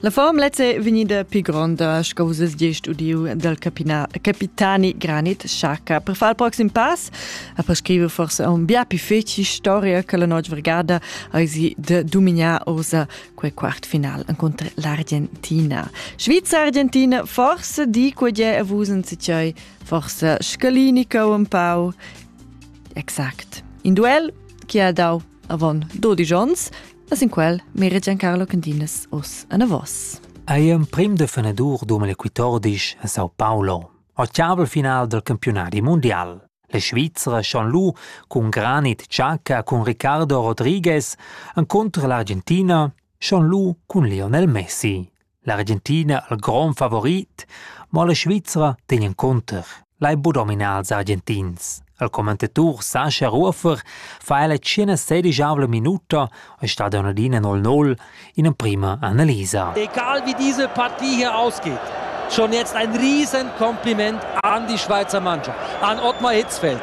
La formlezza è vegnida più gronda, sco vus has gist udiu, del capina, capitani Granit Xaca. Per far il prossimo pass, a prescrivere forse un bia più feci storia che la notte vergada aisi de dominar osa quel quart final contro l'Argentina. Schweiz-Argentina, forse di quel è vusen sicai, forse scalinica un pau. Exakt. In duel, chi ha dau avon 12 ons, e sin quel meregian Carlo Candinas us anavos. Ei emprim de fenadur domani 14 a Sao Paulo, occiabel final del campionati mondial. La Svizzera schon lu cun Granit Xhaka cun Ricardo Rodriguez encontro l'Argentina schon lu cun Lionel Messi. L'Argentina al grond favorit, mo la Svizra tegn encunter. Lai bu dominar ils Argentins. Il commentator Sascha Rufer fa ella 116 minuta e sta da adina 0-0 in prima analisa. Egal wie diese Partie hier ausgeht, schon jetzt ein riesen Kompliment an die Schweizer Mannschaft, an Ottmar Hitzfeld.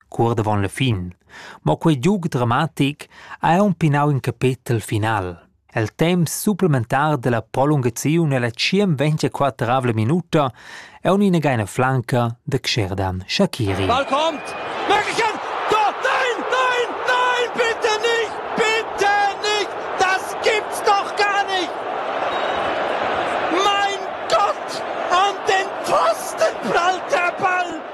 cuort avon la fin. Mo quei giug dramatic ha aunc pinau in capetel final. El temps supplementar della prolungaziun ella tschien ventiquattravla minuta è un'inageina flanca de Xherdan Shakiri. Ball kommt! Möglichkeit! Tor! Nein! Nein! Nein! Bitte nicht! Bitte nicht! Das gibt's doch gar nicht! Mein Gott! An den Pfosten prallt der Ball!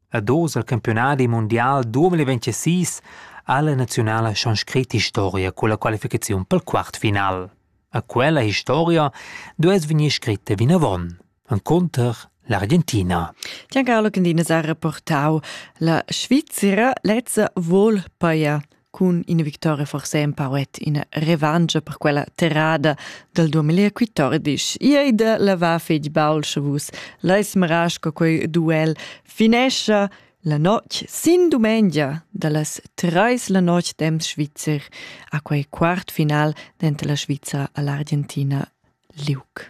Ad oz al campiunadi mundial 2026 ha la naziunala schon scrit historia culla qualificaziun pel quartfinal. A quella historia duess vegnir scritta vinavon, encunter l'Argentina. Gian Carlo Candina ha reportau la Svizzera lezza vol paia cun ina victoria forse empauet ina revancha per quella terrada dal 2014. Disch, ei da lavar fetg baul sche vus leis maras co quei duel finescha la notg sin dumengia da las treis la notg temps Schweizer a quei quart final dentro la Sviza all'Argentina Liuc.